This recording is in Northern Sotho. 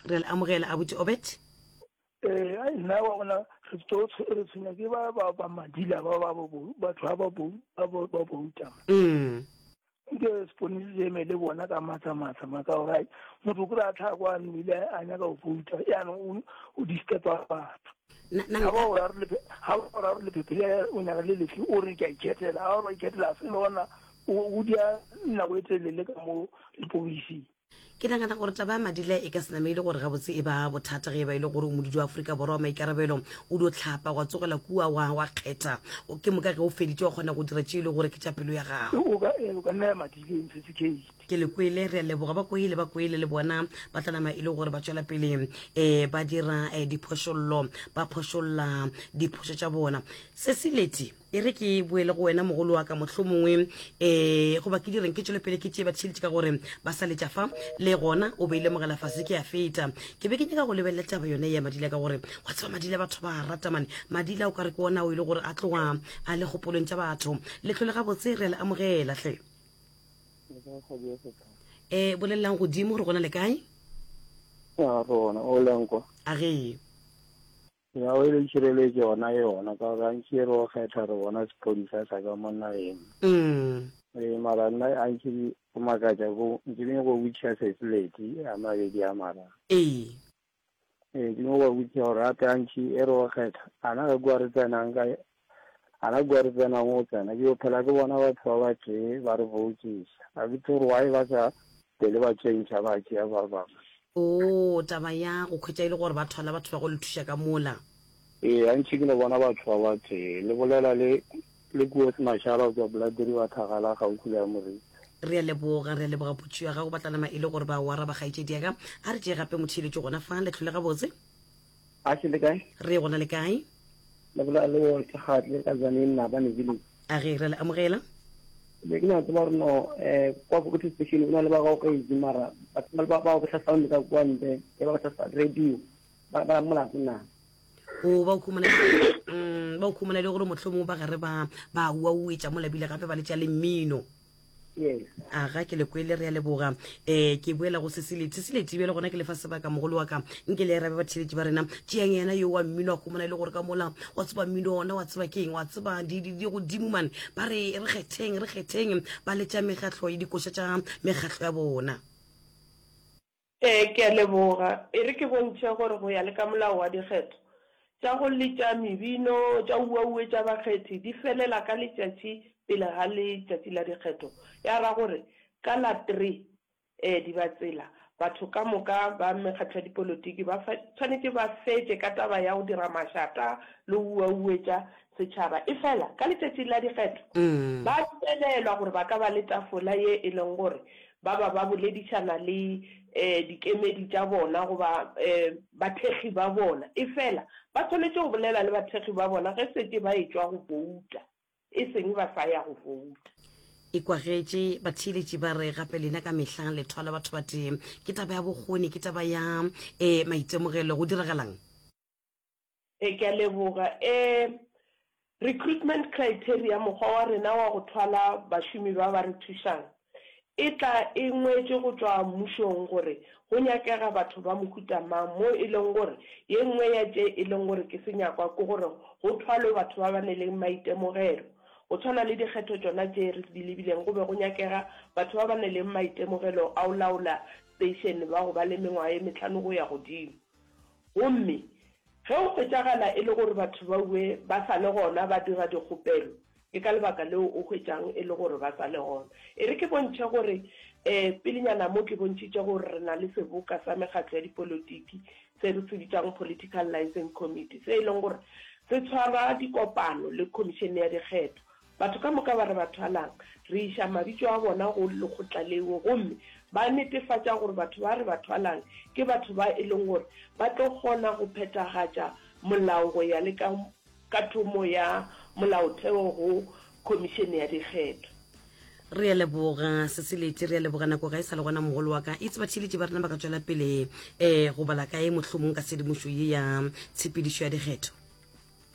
Re a le amogela, Abuti Obed. Ee, ai nna wa bona re tlo re tshwenya ke ba ba ba madila ba ba bo batho ba ba bo ba bo ba bo utama Mm. nke se pone se eme le bona ka matsa matsa maka o gai motho kore a tlha kwa nile a nyaka go bouta ya no o o disturba batho Na na ha ba o ra re le ha ba o ra re le phepele o nyaka le lefi o re ke a ikhetela ha o re ikhetela se lona o o dia nako e telele ka mo le poisi Ke nagana gore taba ya Madila e ka se name e le gore gabotse e ba bothata ge e ba e le gore o modudi wa Aforika Borwa wa maikarabelo o di o tlhapa wa tsogela kua wa wa kgetha ke moka ge o feditše wa kgona go dira tše e le gore ke tša pelo ya gago. O ka eh, o ka nna ya Madile e ntshetse gate. Ke le kwele re a leboga ba kwele ba kwele le bona ba tla nama e le gore ba tšwela pele um ba dira um diphošollo ba phošolla diphošo tša bona se se leti E re ke boele go wena mogolo wa ka mohlomongwe e goba ke direng ke tšwelopele ke tšee batšheletše ka gore ba sa letša fa le gona o beile mogela fase ke a feta ke be ke nyaka go lebelela taba yone ya madila ka gore wa tseba madila batho ba a rata mane madila o ka re ke ona o e le gore a tloga a le kgopolong tša batho letlho le gabotse re a le amogela hle um bolelelang godimo gore gona le kae a ge Ya o e le tšhireletšo yona e yona ka gore antši e re o kgetha re bona sephodisa sa ka mo nageng. Umm. Ee mara nna antši go makatša ko ntše ke nyoko go botšiša sesileti a mabedi a mara. Ee. Ee ke nyoko go botšiša gore gape antši e re o kgetha ana ge kua re tsenang ka A na kua re tsenago go tsena, ke yo phela ke bona batho ba ba tee ba re botšiša, a ke tsebe gore why ba sa pele ba tšentšha ba tšea ba bangwe. Oo, taba ya go khwetša e le gore ba thwala batho ba go le thuša ka mola. Ee, gantši ke no bona batho ba ba tee le bolela le, le kuo se mašala go tšwa Blood River Thagala kgaufsi le ya Moriti. Re a leboga, re a leboga potšo ya gago, ba tla nama e le gore ba o araba kgaetšedi ya ka. A re tšee gape motšheletšo gona fa, le tlhole gabotse. A se le kae? Re gona le kae? Le bolela le o ke ga tle ka Zaneng na ba ne village. A ge re le amogela. Be ke na tseba gore no eh kwa go ke station o na le ba go ka itse mara ba ba ba go tla sound ka kwa ntle e ba tla sa radio ba ba molato na. O ba o khumana mm ba o khumana le gore mohlomong ba gare ba ba wa uetša mo labile gape ba le tša le mmino. aga ke lekwele re ya leboga um ke boela go seseleti seseleti bjale gona ke lefa sebaka mogolo wa ka nke le arabe batheletši ba rena tšeang yena yo wa mmino a gomona e le gore ka mola wa tseba mmino ona wa tseba keng wa tseba godimo mane ba re re kgetheng re kgetheng ba letša mekgatlho le dikoša tša mekgatlho ya bona Ee, ke a leboga. E re ke bontšhe gore go ya le ka molao wa dikgetho, tša go letša mebino, tša uaue tša bakgethi di felela ka letšatši pele ga letšatši la dikgetho, ya ra gore ka la three ee di ba tsela. Batho ka moka ba mekgatlo ya dipolotiki ba swanetše ba fetše ka taba ya go dira mašata le go uauetša Setšhaba, efela ka Letšatši la Dikgetho ba dumelelwa gore ba ka ba le tafola ye e lego gore ba ba ba boledišana le dikemedi tša bona goba bathekgi ba bona, efela ba swanetše go bolela le bathekgi ba bona ge setše ba etšwa go bouta, e seng ba sa ya go bouta. E kwagetše, batheeletši ba re, Gape lena ka mehla le thwala batho batee. Ke taba ya bokgoni? Ke taba ya maitemogelo? Go diragalang? E, ke a leboga. E, recruitment criteria, mokgwa wa rena wa go thwala bašomi ba ba re thušang, e tla e ngwetšwe go tšwa mmušong gore go nyakega batho ba mohuta mang, mo e leng gore ye nngwe ya tše e leng gore ke senyakwa ke gore go thwalwe batho ba ba ne le maitemogelo. Go tshwana le dikgetho tšona tše re di lebileng, go be go nyakega batho ba ba ne le maitemogelo a go laola station ba go ba le mengwaga ye mehlano go ya godimo. Gomme ge go hwetšagala e le gore batho ba ue ba sa le gona ba dira dikgopelo, ke ka lebaka leo o hwetšang e le gore ba sa le gona. E re ke bontšhe gore, ee, pelenyana mo ke bontšhitše gore re na le seboka sa mekgatlo ya dipolotiki se re se bitšang Political Licence Committee, se e leng gore se tshwara dikopano le Khomišene ya Dikgetho Batho ka moka ba re ba thwalang, re iša mabitšo a bona go lekgotla leo gomme ba netefatša gore batho ba re ba thwalang ke batho ba e leng gore ba tlo kgona go phethagatša molao go ya le ka kathomo ya molaotheo go Khomišene ya Dikgetho. Re a leboga Seseleti, re a leboga nako ga e sa le gona mogolo wa ka. Eitse batheeletši ba rena ba ka tšwela pele um go bala kae mohlomong ka tshedimošo ye ya tshepedišo ya dikgetho?